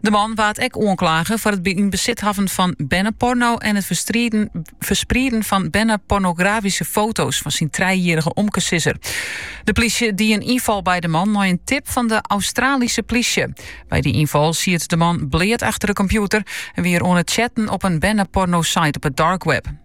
De man waard ek oanklage foar it yn besit hawwen fan berneporno en it fersprieden fan bernepornografyske foto's fan syn trijjierrige omkesizzer. De plysje die in ynfal by de man nei in tip fan de Australyske plysje. By dy ynfal siet de man bleat achter de kompjûter en wie er oan it chatten op in berneporno-site op it darkweb.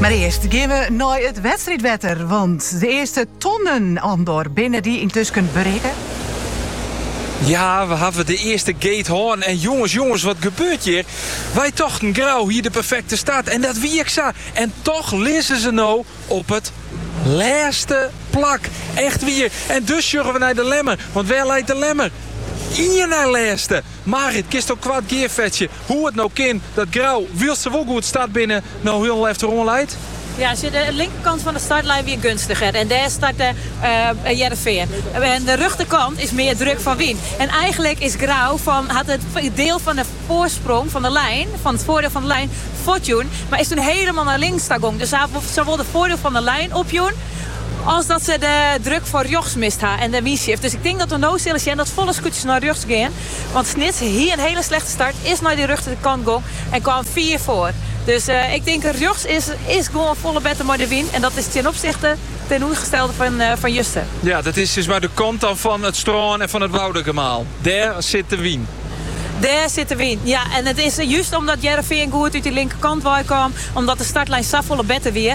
Mar earst gean we nei it wedstriidwetter, want de earste tonnen, Andor, binne dy yntusken berikke. Ja, we hawwe de earste gate hân en jonges, jonges, wat gebeurt hjir? Wy tochten Grou hie de perfekte start en dat wie ek sa. En toch lizze se no op it lêste plak. Echt wier. En dus sjogge we nei de Lemmer, want wêr leit de Lemmer? Ien nei lêste. Marit, kinsto koart gearfetsje hoe it no kin dat Grou, wylst se wol goed start binne, no hielendal efteroan leit? Ja, sjoch, de linkerkant fan de startlijn wie gunstiger en dêr startte Hearrenfean. Oan de rjochterkant is mear druk fan wyn. En eigenlik is Grou fan hat it diel fan de foarsprong fan de lijn, fan it foardeel fan de lijn, fuortjûn, mar is toen helemaal nei links ta gong. Dus sawol de foardeel fan de lijn opjûn. As dat se de druk foar rjochts mist ha en de wynshift. Dus ik tink dat we no sille sjen dat folle skûtsjes nei rjochts gean. Want Snits hie in hiele slechte start, is nei de rjochterkant gong en kaam fiif foar. Dus ik tink rjochts is gewoan folle better mei de wyn en dat is ten opsichte tsjinoergestelde fan juster. Ja, dat is dus mei de kant dan fan it strân en fan it Woudagemaal. Dêr sit de wyn. Dêr sit de wyn, ja. En it is just omdat Hearrenfean goed út dy linkerkant wei kaam, omdat de startlijn safolle better wie.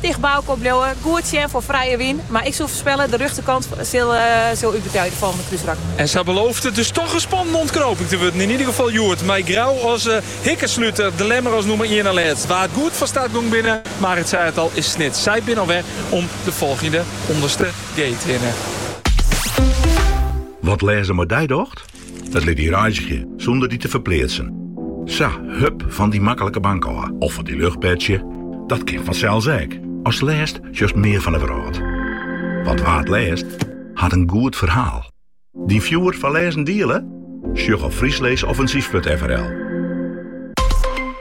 Ticht by elkoar bliuwe, goed sjen foar frije wyn, mar ik soe foarspelle, de rjochterkant sil útbetije de folgjende krúsrak. En sa belooft it dus toch in spannende ûntknoping te wurden, yn ieder gefal hjoed, mei Grou as hikkersluter, De Lemmer as nûmer ien nei lêst. Wa't goed fan start gong binne, Marit sei it al, is Snits. Sy binne al wer om de folgjende ûnderste gate hinne. Wat lêzen mei dy docht? It lit dy reizgje sûnder dy te ferpleatsen. Sa, hup fan dy maklike bank ôf of fan dy luchtbedsje, dat kin fansels ek. Ast lêst sjochst mear fan 'e wrâld. Want wa't lêst, hat in goed ferhaal. Dyn fjoer foar lêzen diele? Sjoch op friesleesoffensief.frl.